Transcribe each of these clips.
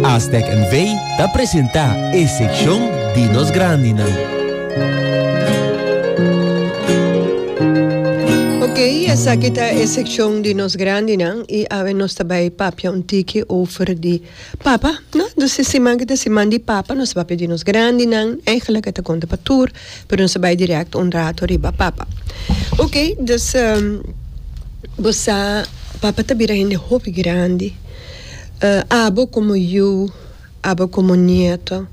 Aztec NV. ta presenta e seccion di nos grandinan. Ok, esaki ta e seccion di nos grandinan y awe nos ta bay papia un tiki over di papa, no? Dus e siman ki ta siman di papa nos ta bay pidi nos grandinan, eigenlijk e ta conta pa tur Pero nos a bai direct un rato riba Papa. Ok, dus bo sa Papa ta bira hende hopi grandi. Abo como yu, abo como nieto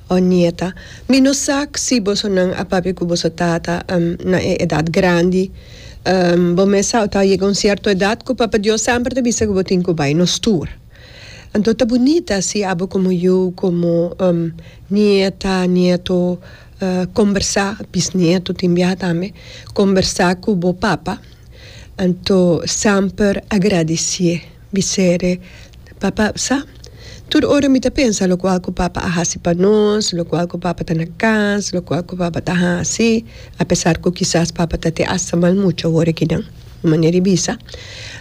o nieta. Mi no sa si bosonan a papia cu boso tata na e edad grandi. Bo mes sa tabata yega un cierto edad cu Papa Dios semper ta bisa cu bo tin cu bai nos tur. Anto ta bunita si abo komo yu, komo nieta, nieto, kombersá, bisnieto tin biaha tambe, kombersá ku bo papa. Anto semper agradisié. Bis'e, Papa, sa, tur ora mi ta pensa lokual ku papa a hasi pa nos, lokual ku papa ta na kas, lokual ku papa ta hasi, apesar ku kisas papa ta te asta malmucha worikinan. un manera di bisa.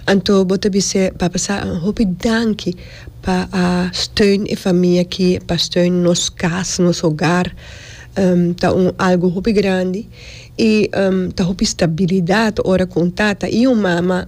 Anto bo ta bis'é, Papa sa, un hopi danki pa a steun e famia aki, pa steun nos kas, nos hogar. Ta un algu hopi grandi i ta hopi stabilidat ora ku un tata i un mama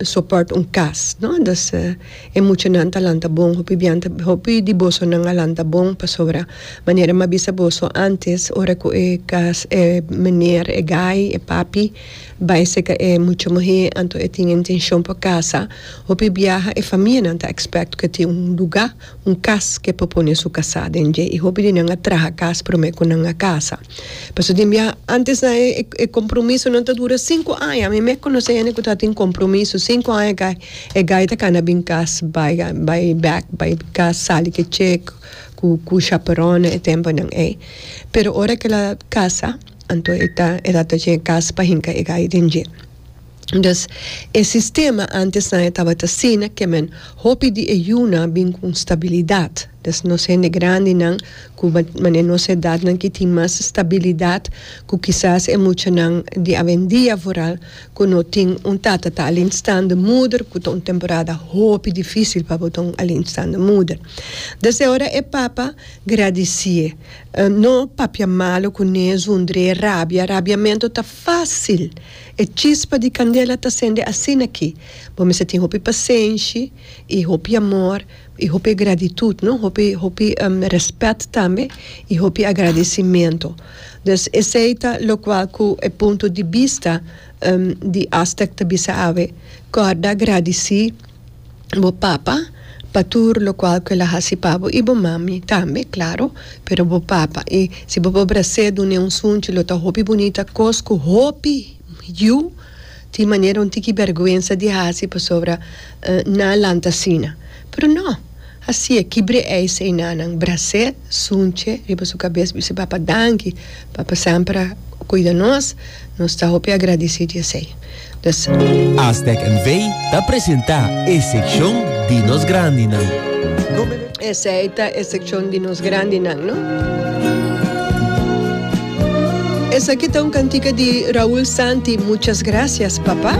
soport un kas, no? Dus, e muchanan ta lanta bon, hopi bian ta, hopi di bosonan a lanta bon pasobra manera m'a bisa boso antes ora ku e kas, e meneer, e guy, e papi. Bai seka e mucha muhé anto e tin e intenshon pa kasa. Hopi biaha e famianan ta expect ku e tin un lugá, un kas, ke por pone su kasá den dje i hopi di nan a traha kas promé ku nan a kasa. Pasobra tin biaha antes nan e kompromisonan ta dura sinku aña. Mi mek konosé hende ku ta tin kompromiso sinku aña gai, e gai ta kana bin kas bai bai bek bai kas sali ke chek ku ku shaperòn e temponan ei. Pero ora ke el a kasa. Anto e ta e tabata dje kas pa hinka e gai den dje. Dus e sistema antesnan e tabata asina ke men hopi di e yunan bin ku un stabilidat. Dus nos hende grandinan ku mane nos edatnan ki tin mas stabilidat ku kisas e muchanan di awendia vooral ku no tin un tata ta alleenstaande moeder ku ta un temporada hopi difísil pa bo ta un alleenstaande moeder. Dus e ora e papa gradisié. No papia malu cu ne zundré rabia. Rabiamento ta facil. E chispa di candela ta sende asina aki. Bo mester tin hopi pasenshi y hopi amor y hopi gratitud, no? Hopi, hopi respet tambe y hopi agradecimento. Dus esey ta locual cu e punto di bista di Aztec ta bisa awe, Corda, gradici. bo papa pa tur lokual ku el a hasi pa bo i bo mami tambe klaro pero bo papa i si bo por bras'é dun'é un sunchi lo ta hopi bunita kos ku hopi yu tin manera un tiki bèrgwensa di hasi pasobra nan a lanta asina pero nò. Hasié kibr'é eis einanan brasé sunche riba su kabes bis'é Papa danki Papa semper a kuida nos nos ta hopi agradisí di esei nos. Aztec NV ta presentá e sekshon di nos grandinan. Esei ta e sekshon di nos grandinan no. Esaki ta un kantika di Raul Santi Muchas gracias papá.